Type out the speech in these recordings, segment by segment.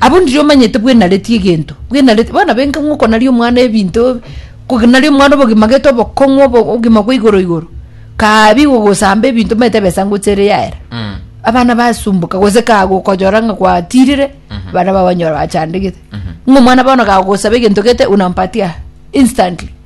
Abwo ndiri omanyete bwenareti egento bwenareti bono benka ng'o okonaria omwana ebinto konaria omwana obogima gete obokong'u obo obogima bwa igoro igoro kabi gogosamba ebinto omanyete ebesa ngocha ere yaera Mm. abana basumbuka gose kagokonyora ng'a gwatirire abana bao banyora bachandegete ng'o omwana bono kagosaba egento gete unampatia instantly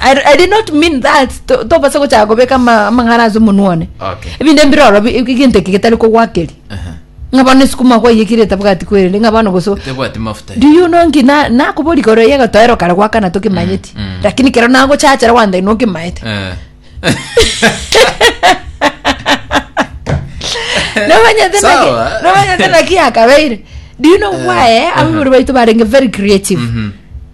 I, I did not mean that To- tobasa gochaka kobeka ama- amang'ara ase omonwa one Okay. ebinde mbire oro bi- bi- egento eke getari kogwakeri Aha. ng'a bono esukuma kwayekire etabwati kwerende ng'a bono goso Tebwati mafuta. do you know nki na- nakobori koro yega toero kare gwakana tokimanyeti Mm, mm. lakini kero nagochachera wanda ino okimaete Eh. nomanyete Sawa. naki- nomanyete naki akabeire do you know why eh, ababori baito barenge very creative Mhm.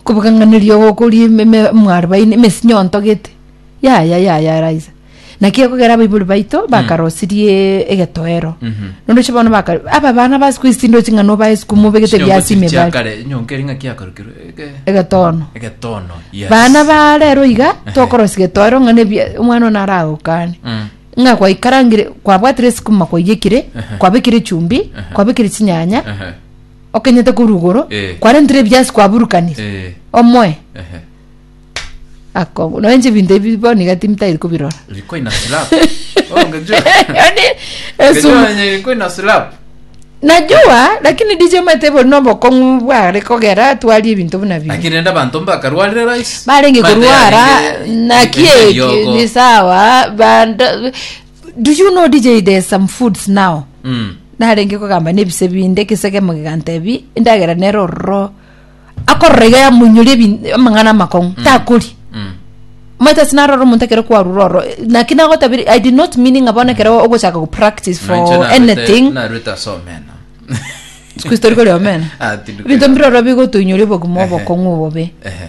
Okobokang'aneria ogo okoria ime- ime- emwarubaini emesi nyonto gete yaya yaya eraisa naki ekogera abaibori baito bakarosirie egetoero nondeche bono baka aba abana base koisinda ochi ng'a nobae esukuma obegete ebiasi ime ebari Chiakare, nyonka eri ng'aki yakarukirwe ege- egetono egetono yes. bana ba rero iga tokorosi getoero ng'a nebi omwana one aragokane Mm. ng'a gwaikarangire kwabwatire esukuma kwaiyekire Ehe. kwabekire echumbi kwabekire chinyanya Ehe. okenyete korwa igoro Eh. kwarentire ebiasi kwaburukania Eh, omoe ehe. akongu noe inche ebinto ebi bono iga timtairi kobirora Ilikuwa ina slap. Oh, ngejua. Yaani, esu- Ngejua yenye ilikuwa ina slap. najua lakini dj omanyete bori nobokong'u bware kogera atwarie ebinto buna bino Lakini enda bantu mbakarwarire rais. barenge Mate korwara yarenge- naki yarenge eki yogo. ni sawa banda Do you know DJ there's some foods now Mm. narenge kogamba nebise binde kisegemo gigantebi endagera nere ororo akorora iga yamunyori ebi- amang'ana amakong'u takori Mm. maita sinarora omonto ekero kwarura oro naki nagotabiri i did not meaning abona ekero ogochaka go practice for Naiche narwete- anything narwete ase omena. sikuisi tori kori omena Ah, tindi ebinto kori mbire omena. oro bigotoinyori obogima Ehe. obokong'u obobe Ehe.